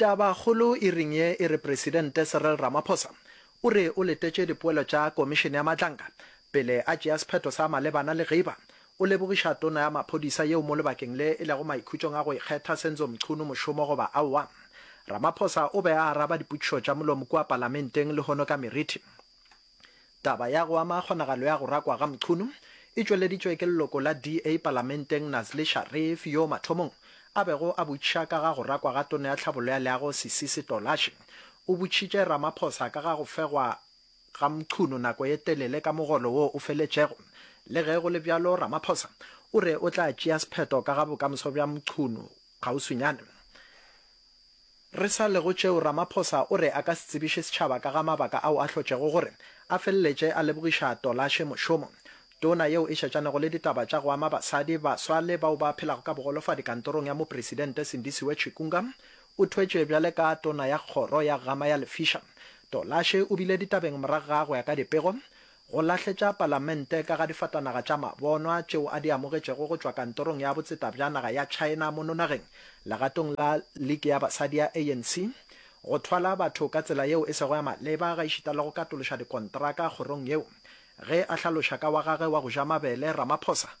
Tabakgolo e reng ye e re Presidente Cyril Ramaphosa o re o letetše dipoelo tša Komišene ya Matlanga pele a tšea sephetho sa malebana le Giba. O lebogiša Tona ya Maphodisa yeo mo lebakeng le e lego maikhutšong a go ikgetha Senzo Mchunu mošomo goba aowa. Ramaphosa o be a araba dipotšišo tša molomo kua Palamenteng lehono ka meriti. Taba ya go ama kgonagalo ya go rakwa ga Mchunu e tšweleditšwe ke leloko la DA palamenteng Nazli Sharif yoo mathomong a bego a botšiša ka ga go rakwa ga Tona ya Tlhabollo ya Leago Sisi Sitolashi. O botšitše Ramaphosa ka ga go fegwa ga Mchunu nako ye telele ka mogolo woo o feletšego. Le ge go le bjalo Ramaphosa o re o tla tšea sephetho ka ga bokamoso bja Mchunu kgauswinyane. Re sa le go tšeo, Ramaphosa o re a ka se tsebiše setšhaba ka ga mabaka ao a hlotšego gore a feleletše a lebogiša Tolashe mošomong. Tona yeo e šetšanego le ditaba tša go ama basadi, baswa le bao ba phelago ka bogolofadi kantorong ya mopresidente Sindisiwe Chikunga o thwetše bjale ka tona ya kgoro ya gama ya lefiša. Tolashe o bile ditabeng morago ga go ya ka dipego go lahletša Palamente ka ga difatanaga tša mabonwa tšeo a di amogetšego go tšwa Kantorong ya Botseta bja Naga ya China mono nageng, legatong la Liki ya Basadi ya ANC, go thwala batho ka tsela yeo e sego ya maleba gaešita le go katološa dikontraka kgorong yeo, ge a hlaloša ka wa gagwe wa go ja mabele, Ramaphosa.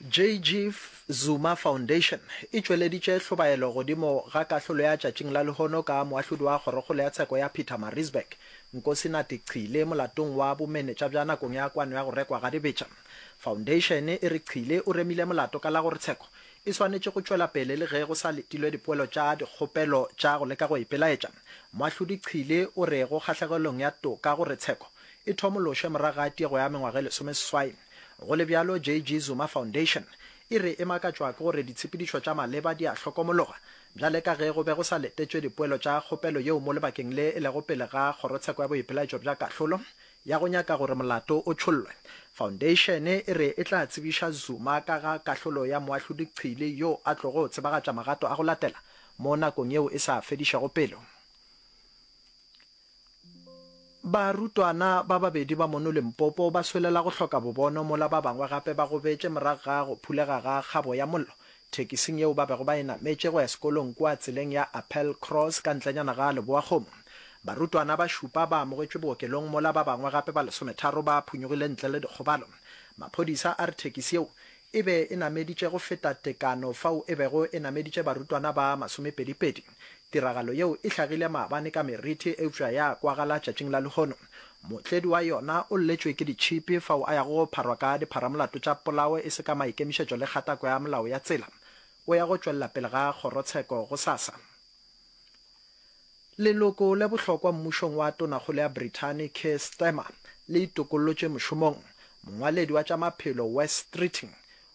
JG Zuma Foundation e tšweleditše hlobaelo godimo ga kahlolo ya tšatšing la lehono ka moahlodi wa kgorokgolo ya tsheko ya Pietermaritzburg, Nkosinathi Chile molatong wa bomenetša bja nakong ya kwano ya go rekwa ga dibetša. Faundeišene e re Chile o remile molato ka la gore tsheko e swanetše go tšwela pele le ge go sa letilwe dipoelo tša dikgopelo tša go leka go ipelaetša. Moahlodi Chile o re go kgahlegelong ya toka gore tsheko e thomološwe morago ga tiego ya mengwaga e lesomeseswai. Go le bjalo, JG Zuma Foundation e re e makatšwa ke gore ditshepedišo tša maleba di a hlokomologa bjale ka ge go be go sa letetšwe dipoelo tša kgopelo yeo mo lebakeng le e lego pele ga Kgorotsheko ya Boipelaetšo bja Kahlolo ya go nyaka gore molato o tšhollwe. Foundation e re e tla tsebiša Zuma ka ga kahlolo ya Moahlodi Chili yo a tlogo tsebagatša magato a go latela mo nakong yeo e sa fedišego pelo. Barutwana ba babedi ba mono Limpopo ba swelela go hloka bobono mola ba bangwe gape ba gobetše morago ga go phulega ga kgabo ya mollo thekising yeo ba bego ba e nametše go ya sekolong kua tseleng ya Appel Cross ka ntlenyana ga Leboakgomo. Barutwana ba šupa ba amogetšwe bookelong mola ba bangwe gape ba lesometharo ba phunyogile ntle le dikgobalo. Maphodisa a re thekisi yeo e be e nameditše go feta tekano fao e bego e nameditše barutwana ba masomepedipedi. Tiragalo yeo e hlagile maabane ka meriti eupša ya kwagala tšatšing la lehono. Mootledi wa yona o lletšwe ke ditšhipi fao a yago go pharwa ka dipharamolato tša polao e se ka maikemišetšo le kgatako ya molao ya tsela. O ya go tšwelela pele ga kgorotsheko gosasa. Leloko le bohlokwa mmušong wa tonakgolo ya Brithani Keir Starmer le itokollotše mošomong. Mongwaledi wa tša maphelo Wes Streeting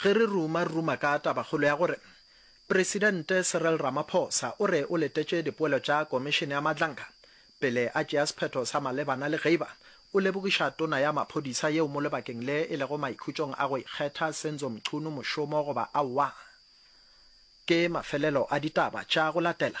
Ge re ruma-ruma ka tabakgolo ya gore Presidente Cyril Ramaphosa o re o letetše dipoelo tša Komišene ya Madlanka pele a tšea sephetho sa malebana le Geiba, o lebogiša Tona ya Maphodisa yeo mo lebakeng le e lego maikhutšong a go ikgetha Senzo Mchunu mošomo goba aowa. Ke mafelelo a ditaba tša go latela